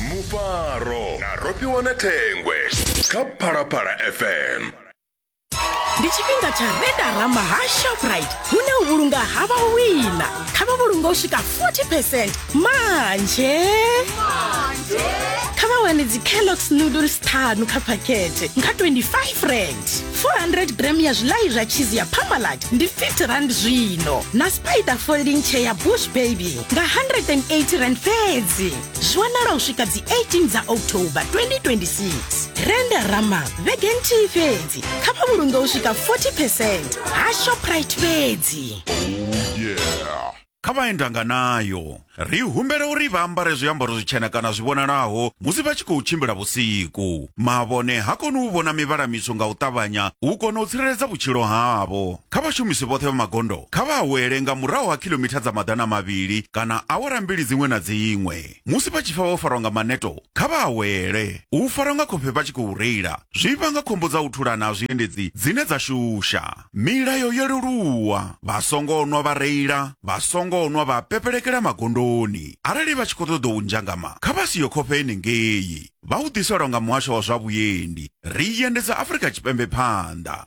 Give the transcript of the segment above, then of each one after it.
mufaro na rofhiwa na thengwe kha phalaphala fm ndi tshifhinga tsha redarama ha shoprite hune u vhulunga ha vhawina kha vha vhulunga u swika 40 percent manje kha vha wane dzicalox noodles ṱhanu kha phakhethe nga 25 rand 400 gram ya zwiḽai zwa cheese ya pamalat ndi 50 rand zwino na spider folding chair ya bush baby nga 180 rand fhedzi zwi wanala u swika dzi 18 dza october 2026 renda rama vhege nthihi fhedzi kha vha vhulunge u swika 40 percent ha shoprite fhedzi kha vhaendanga nayo ri humbela uri vha ambare zwiambaro zwitshena kana zwi vhonalaho musi vha tshi khou tshimbila vhusiku mavhone ha koni u vhona mivhala mitswu nga u ṱavhanya u kona u tsireledza vhutshilo havho Kha vhashumisi vhoṱhe vha magondo kha vha awele nga murahu ha khilomitha dza maḓana mavhili kana awara mbili dziṅwe na dziṅwe. Musi vha tshi pfa vho farwa nga maneto, kha vha awele. U farwa nga khofhe vha tshi khou reila zwi vhanga khombo dza u thulana ha zwiendedzi dzine dza shusha. Milayo yo leluwa, Vha songo nwa vha reila, vha songo nwa vha pepelekela magondoni. Arali vha tshi khou ṱoḓa u nzhangama, kha vha sie khofhe henengei. Vha u ḓiselwa nga Muhasho wa zwa Vhuendi. Ri i endedza Afrika Tshipembe phanḓa.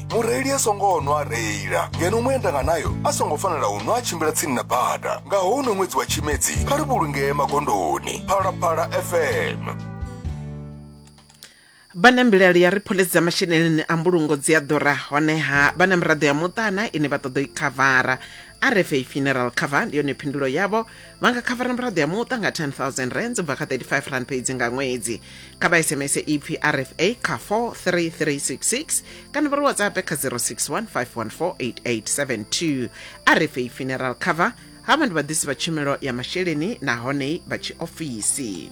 mureili a songo nwa a reila ngeno muendanga nayo a songo fanela u nwa a tshimbila tsini na bada nga houno ṅwedzi wa tshimedzi kha ri vhulungee magondoni phalaphala fm vha na mbilaelo ya ri phoḽisi dza masheleni a mbulungo dzi a ḓura honeha vha na miraḓo ya muṱana ine vha ṱoḓa u i khavara rfa funeral cover ndi yone phindulo yavho vha nga khavara miraḓo ya muṱa nga 10000 rands u bva kha 35 rand fhedzi nga ṅwedzi kha vha sms ipfi rfa kha 43366 kana vha ri whatsapp kha 061 514 rfa funeral cover havha ndi vhaḓisi vha tshumelo ya masheleni nahone vha tshiofisi